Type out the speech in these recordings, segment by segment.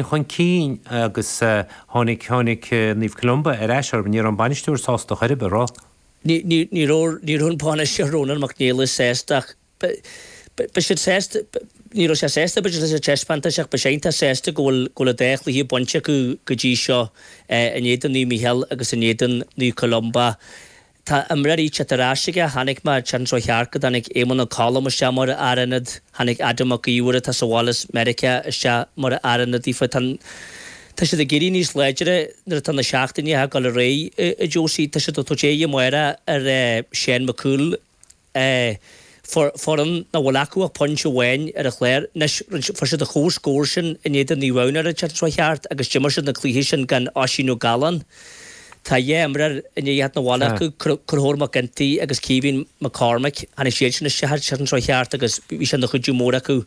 chun cinn agus tháinig, tháinig Naomh Columba ar ais orthu. Ní raibh an bainisteoir sásta ar chor ar bith. Ní raibh, ní raibh an bainisteoir, Rónán Mac Niallais, sásta ach beidh, beidh siad sásta, ní raibh sé sásta, b'fhéidir, leis an taispeántas ach beidh sé iontach sásta go bhfuil, go bhfuil an dá chluiche bainte acu go dtí seo in éadan Naomh Mícheál agus in éadan Naomh Columba. Tá imreoirí ag teacht ar ais aige, chonaic mé ar an tseachtain seo a chuaigh thart go dtáinig Éamonn Ó Colm isteach mar Fhear Ionaid, tháinig Adam Mac Íomhair atá sa bhaile as Meiriceá isteach mar fhear ionaid daofa. Tá. tá siad ag éirí níos láidre nuair atá na seachtainí ag gabháil ar aghaidh, a Josie. Tá siad ag tabhairt aghaidh amárach ar Sheán Mac Cumhaill. é. Fuair foireann nach bhfuil acu ach pointe amháin ar an chlár anois, rinne, fuair siad an comhscór sin in éadan Naomh Adhamhnáin ar an tseachtain seo a chuaigh thart agus d'imir siad an cluiche sin gan Oisín Ó Gallán. Tá dhá imreoir i ndiaidh theacht 'na bhaile acu, Conchúr Mac Ginty agus Caoimhín Mac Cormaic, tháinig siad sin isteach ar an tseachtain seo a chuaigh thart agus bhí sé ina chuidiú mór acu.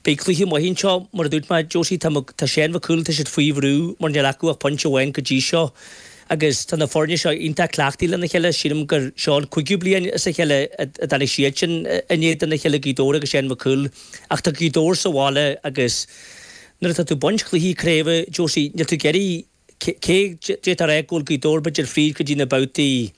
Beidh cluiche maith anseo, mar a dúirt mé, Josie, tá, tá Seán Mac Cumhaill, tá siad faoi bhrú mar níl acu ach pointe amháin go dtí seo. agus tá na foirne seo iontach cleachtaithe lena chéile, sílim gur seo an cúigiú bliain as a chéile a d'imir siad sin in éadan a chéile Gaoth Dobhair agus Seán Mac Cumhaill ach tá Gaoth Dobhair sa bhaile agus nuair atá tú ag baint cluichí craoibhe, Josie, níl tú ag iarraidh cé d'fhéadfá a rá go bhfuil Gaoth Dobhair b'fhéidir fríd go dtí na babhtaí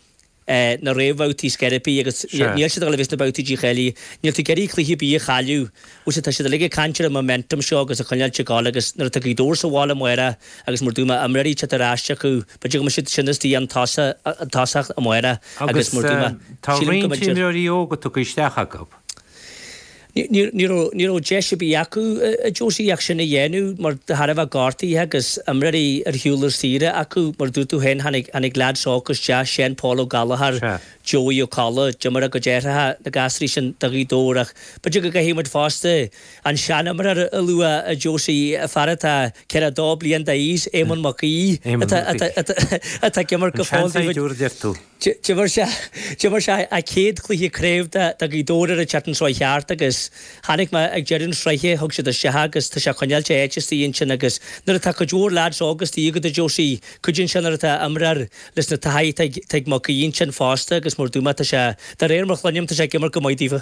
na réamhbhabhtaí ar scor ar bith agus níl siad ag dul a bheith sna babhtaí dícháilithe. Níl tú ag iarraidh cluiche ar bith a chailleadh, a Josie, tá siad uilig ag caint ar an momentum seo agus a choinneáilt ag gabháil agus nuair atá Gaoth Dobhair sa bhaile amárach agus mar a dúirt mé imreoirí ag teacht ar ais acu, b'fhéidir go mbeidh siad sin istigh ón tosach amárach agus mar a dúirt mé, sílim go mbeidh siad. Agus tá roinnt imreoirí óga tugtha isteach acu. Ní raibh deis ar bith acu, a Josie, ach sin a dhéanamh mar de thairbhe gortaithe agus imreoirí ar shiúl ar saoire acu, mar a dúirt tú féin, tháinig lads óga isteach, Seán Pól Ó Gallchóir, Joey Ó Colla, d'imir a gcuid aithreacha, na gasraí sin, do Ghaoth Dobhair ach b'fhéidir go gcaithfidh muid fosta an seanimreoir a lua, a Josie, fear atá ceathracha a dó bliain d'aois, Éamonn Mac Aoidh, atá ag imirt go fóill do chuid. D'imir sé D'imir sé a chéad chluiche craoibhe do Ghaoth Dobhair ar an tseachtain seo a chuaigh thart agus chonaic mé ag deireadh na sraithe, thug siad isteach é agus tá sé ag coinneáilt a áit istigh ansin agus nuair atá cuid mhór leaids óga istigh agat a Josie, cuidíonn sé nuair atá imreoir leis an taithí atá ag Mac Aoidh ansin fosta agus mar a dúirt mé tá sé, de réir mar a chluinim, tá sé ag imirt go maith daofa.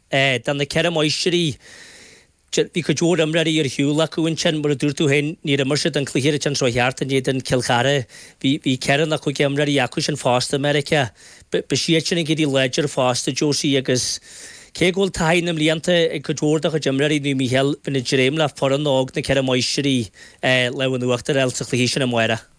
éadan na Ceithre Máistrí, bhí cuid mhór imreoirí ar shiúl acu ansin, mar a dúirt tú féin, níor imir siad an cluiche ar an tseachtain seo a chuaigh thart in éadan Chill Chartha. Bhí ceithre nó cúig imreoirí acu sin fosta i Meiriceá. Beidh siad sin ag éirí níos láidre fosta, Josie, agus cé go bhfuil taithí na mblianta ag cuid mhór de chuid imreoirí Naomh Mícheál, bheinn ag dréim le foireann óg na Ceithre Máistrí, lámh in uachtar a fháil sa chluiche sin amárach.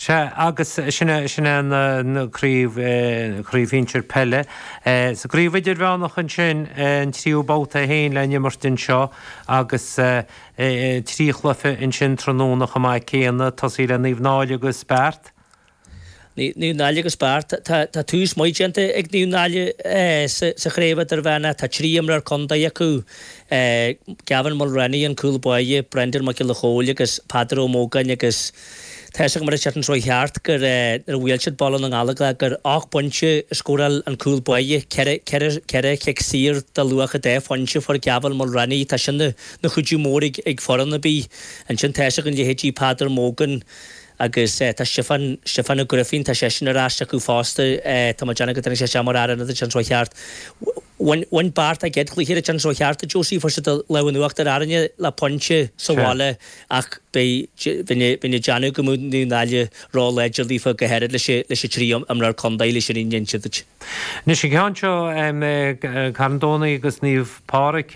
Sea, agus sin é, sin é an craobh, an chraobh shinsir peile. Sa gcraobh idirmheánach ansin, an tríú babhta é féin le n-imirt anseo agus trí chluiche ansin tráthnóna chomh maith céanna, tosaigh le Naomh Náille agus Beart. Naomh Náille agus Beart, tá tús maith déanta ag Naomh Náille sa chraobh idirmheánach, tá trí imreoir contae acu é Gavin Mulreany, an cúl báire, Brendan Mac Giolla Chomhaill agus Peadar Ó Mógáin agus tá fhios agam ar an tseachtain seo thart gur nuair a bhuail siad Baile na nGallóglach gur ocht bpointe a scóráil an cúl báire, ceithre, ceithre, ceithre chic saor de luach dhá phointe a fuair Gavin Mulreany, tá sin ina chuidiú mór ag foireann ar bith. Ansin tá fhios agat an leithéidí Peadar Mogan, Agus tá Stiofán, Stiofán Ó Grifín, tá seisean ar ais acu fosta, tá mé ag déanamh go dtáinig seisean mar fhear ionaid an tseachtain seo thart. Bhain, bhain Beart a gcéad chluiche an tseachtain seo thart, a Josie, fuair siad an lámh in uachtar ar Árainne le pointe sa bhaile ach beidh, bheinn a, bheinn ag déanamh go mbeadh Naomh Náille ró-láidir daofa go háirid leis an, leis an trí imreoir contae, leis an fhírinne a inse duit. Anois an ceann seo, Carn Domhnaigh agus Naomh Pádraig,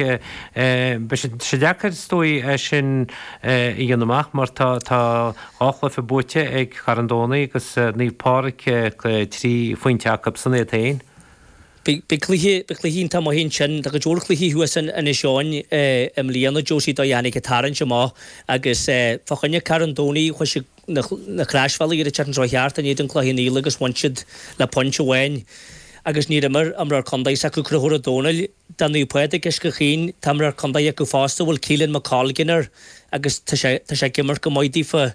beidh sé deacair is dóigh é sin a dhéanamh amach mar tá dhá chluiche buaite ag Carn Domhnaigh agus Naomh Pádraig, trí phointe acusan iad féin. Beidh cluiche iontach maith ansin, tá go leor cluichí thuas in Inis Eoghain i mbliana, Josie, an dóigh a dtáinig an tarraingt amach agus fá choinne Carn Domhnaigh, chuaigh siad na Croisbhealaí ar an tseachtain seo thart in éadan Chloich Cheann Fhaola agus bhain siad le pointe amháin agus níor imir imreoir contae s'acu, Conchúr Ó Dónaill, do Naomh Pádraig Uisce Chaoin. Tá imreoir contae acu fosta a bhfuil Caolan McColgan air agus tá sé ag imirt go maith daofa.